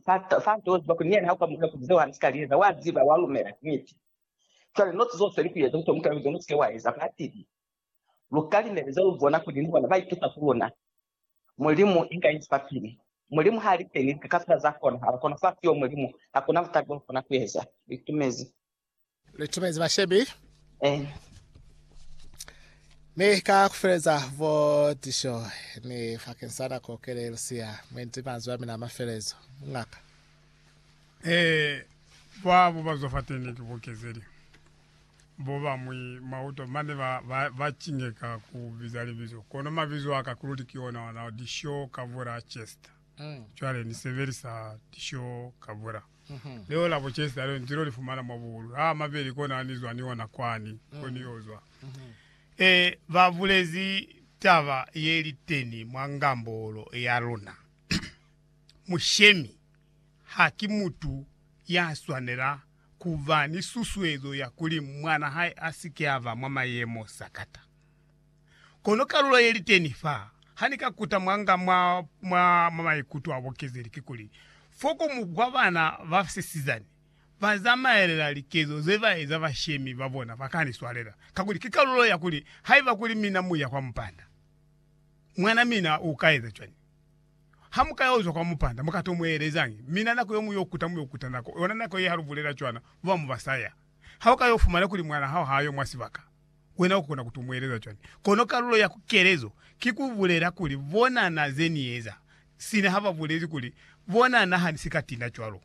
Pastor Santos bakuli ni yena ha ukamuhela kuli zeo hana sika lieza, wa ziba, wa lumela, ki niti. Cwale note zo useli kueza kuto mukela kuli zona usike wa eza, ba tibi. Lu ka limeleza lu bona kuli ni bona ba itusa ku luna. Mulimu inga inzi fa pili. Mulimu ha li teni, lika kafela za konahala, kono fa siyo Mulimu, hakuna butali bo lu kona kueza. Lu itumezi. Lu timezi bashebi. Eh. Ni ka kufeleza vo tisho ni fakeng sa nako kele lusia mwendi manzwi a mina mafelezo. Mungaka. Eh, ba bo ba zwa fateni ki bokezeli. Bo bamwi mauto mane ba, ba, ba cingeka ku biza libizo. Kono mabizo aka kuluti ki ona ona, Disho Kavura Chester. Mm. Cwale ni sebelisa Disho Kavura. Leo la bo Chester leo nzilo lifumana mwa buhulu ha mabeli kona ni zwa ni ona kwani ko ni yo zwa. E, ba bulezi taba ye liteni mwa ngambolo ya luna. Mushemi ha ki mutu ya swanela ku ba ni susuezo ya kuli mwana hae a si ke a ba mwa mayemo sakata. Kono kalulo ye li teni fa, ha ni ka kuta mwanga mwa, mwa, mwa maikuto a bukezeli, kikuli, fo ku mukwa bana ba sisizani ba zamaelela likezo ze ba eza bashemi ba bona ba ka ni swalela, kakuli ki kalulo ya kuli, Haiba kuli mina mu ya kwa mupanda, mwana mina u ka eza cwañi? Ha mu ka yo zwa kwa mupanda, mu ka to mu elezañi? Mina nako yo mu yo kuta, mu yo kuta nako yona nako ye ha lu bulela cwana, ba ba mu ba saya. Ha u ka yo fumana kuli mwana hao ha yo mwa sibaka, Wena ukona ku tumueleza cwani? Kono kalulo ya kukelezo ki ku bulela kuli bonana ze Ni eza, sina ha ba bulezi kuli, Bonana ha Ni si ka tina cwalo.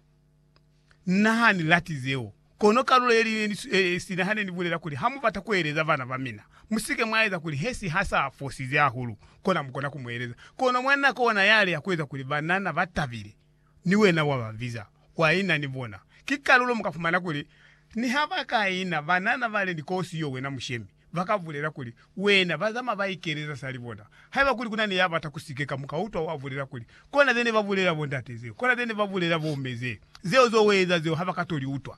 Na ha ni lati zeo. Kono kalulo ye li ne, sina ha ne ni bulela kuli, Ha mu bata ku eleza bana ba mina, mu si ke mwa eza kuli Hesi ha sa fosize hahulu, kona mu kona ku mu eleza. Kono mwa nako ona yale ya ku eza kuli banana ba tabile, Ni wena wa ba biza, wa ina ni bona. Ki kalulo mu ka fumana kuli, Niha ba ka ina, banana bale ni kosi yo wena mushemi, ba ka bulela kuli, Wena, ba zama ba ikeleza sali bona. Haiba kuli kuna ni ya bata ku sikeka, mu ka utwa wa bulela kuli, Kona ze ne ba bulela bondate zeo, kona ze ne ba bulela bomme zeo, zeo zo we eza zeo ha ba ka toli utwa.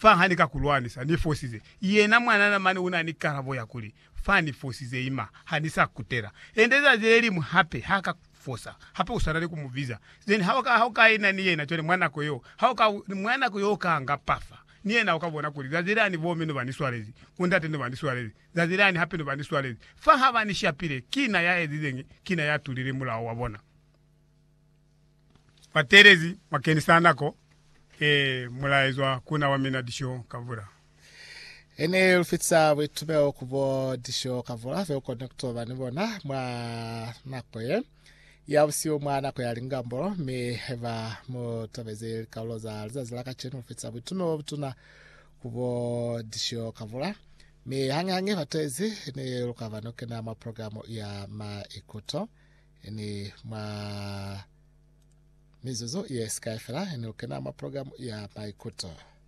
Fa ha ni ka ku lwanisa, ni fosize. Yena mwanana mane una ni kalabo ya kuli, Fa ni fosize ima, ha ni sa kutela. Ende zazi le liñwi hape, ha ka fosa. Hape uswana ni ku mu biza. Then ha uka, ha uka ina ni yena cwale mwa nako yeo, ha uka, mwa nako yeo uka nga pafa. Ni yena uka bona kuli, zazi lani bomme ne ba ni swalezi, ku ndate ne ba ni swalezi, zazi lani hape ne ba ni swalezi. Fa ha ba ni shapile, ki na ya ezizeñi? Ki na ya tulile mulao wa bona. Batelezi bakeni sa nako e mulaezwa ku na wa mina disho kavula. E ne lu fitisa buitumeo ku bo disho kavula ze u koni ku toba ni bona mwa nako ye ya busihu mwa nako ya lingambolo. Mi haiba mu tobezi likaulo za lizazi la kacenu, lu fitisa buitumeo bo butuna ku bo disho kavula. Mi hañihañi batelezi ne lu ka ba ni ku kena mwa programe ya maikuto. Ini mwa mizuzu ye sikai fela, ini lukena mwa programu ya Maikuto.